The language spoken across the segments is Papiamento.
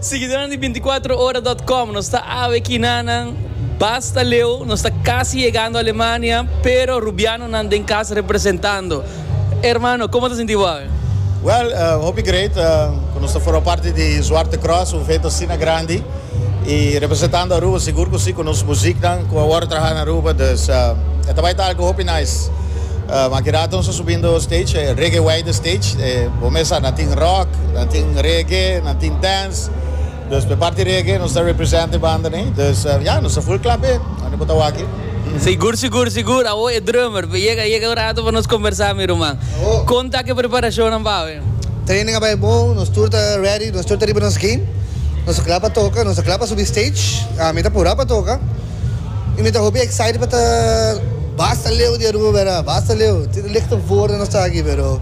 Siguidonan di binticuatroora dot com, nos ta awe kinanan, basta leu, nos ta casi yegando Alemania, pero Rubianonan den cas representando. Hermano, como ta sinti bo awe? Well, hopi great, cu nos ta forma parti di Zwarte Kruis, un evento asina grandi. Y representando Aruba sigur cu si cu nos muziknan cu awor a traha na Aruba dus e ta bay ta algo hopi nice. Maki rato nos a subindo stage, e Reggae Wide Stage, e bo mes sa nan tin rock, nan tin reggae, nan tin dance, dus p'e parti reggae nos ta represent e banda ne. Dus ya nos ta full cla p'e anto bo ta waki. Sigur sigur sigur, awo e drummer, yega yega un rato pa nos conversa mi ruman. Con ta cu e preparacionnan pa awe? Training a bai bon, nos tur ta ready, nos tur ta riba nos game. Nos ta kla pa toka, nos ta kla pa subi stage. Mi ta pura pa toka y mi ta hopi excited pa ta basta leu di Aruba bera, basta leu. Tin e lichte woorden nos ta aki pero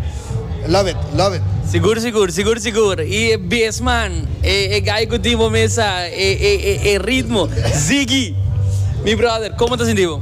love it, love it. Sigur sigur, sigur sigur. Y e bes man, e guy cu tin bo mesa, e ritmo, Ziggy. Mi brother, como ta sinti bo?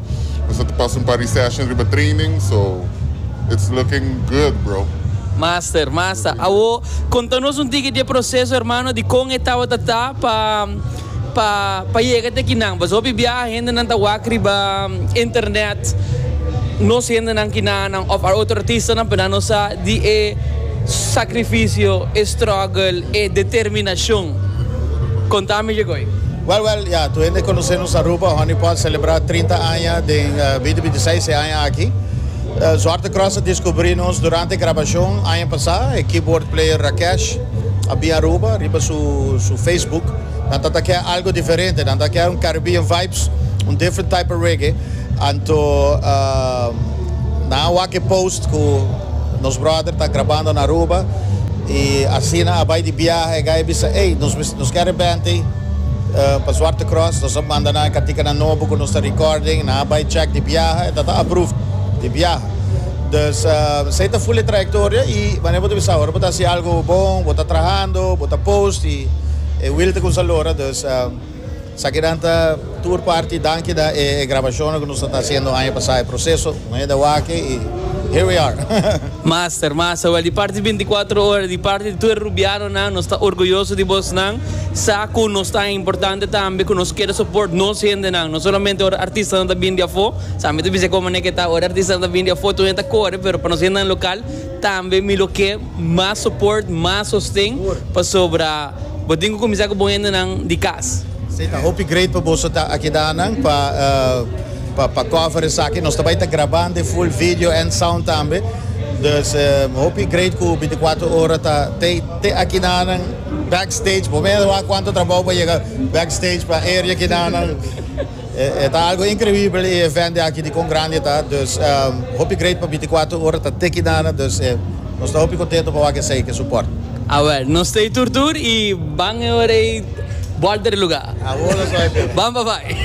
Nos a ta pasa un par di session riba training so it's looking good bro. Master, masta. Awo, konta nos un tiki di e proseso hermano di kon e tabata ta pa pa pa yega te kinan. Paso hopi biaha hendenan ta wak riba internet nos hendenan kinanan of otro artistanan, pero nan no sa di e sacrificio, e struggle, E determinacion con ta mi djego ey? Well well ya tur hende conoce nos Aruba Honey Pot celebra trinta aña den binti binti seis e aña aki. Zwarte Cross a descubri nos durante e grabacion aña pasa. E keyboard player Rakesh a bin Aruba riba su su Facebook. Nan ta ta kier algo diferente. Nan ta kier un Caribbean vibes, un different type of reggae. Anto. Nan wak post cu nos brother ta grabando na Aruba y asina a bay di biaha e gay bisa ey nos ke arepenti pa Zwarte Cross nos a manda nan e katika nan nobo cu nos ta recording nan a bay check di biaha e ta ta approve di biaha dus esey ta full e trayectoria y manera bo ta bisa ora bo ta haci algo bon bo ta trahando bo ta post y e wil ta cuminsa lora dus. Sakinan ta tur parti danki da e grabashonnan ku nos a ta hasiendo aña pasá. E proseso no e dawaki i here we are. Master, master, wèl di parti di binti kuater ora, di parti di tur e rubianonan, nos ta orguyoso di bosnan. Sa ku nos ta importante tambe ku nos keda soport nos hendenan, no solamente ora artistanan ta bin di afó, sa mi ta bisa e komo aneke ta, ora e artistanan ta bin di afó, tur nan ta kore, pero pa nos hendenan lokal tambe mi lo ke. Mas support, mas sosten, pasobra bo tin cu cuminsa cu bo hendenan di cas. Sí, ta hopi great pa boso ta aki danan pa pa pa cover esaki. Nos ta bay ta graba de full video and sound tambe. Dus hopi great cu binticuatro ora ta tey te aki danan backstage. Bo mester wak cuanto trabao pa yega backstage pa area aki danan. E ta algo increíble e event de aki di con grandi ta dus hopi great pa binticuatro ora ta te kinana dus e nos ta hopi contento pa wak esey ke support. Awel, nos ta e tur tur y ban e ora e bòlta di lugar. Awor nos ta e tur. Ban pa bai.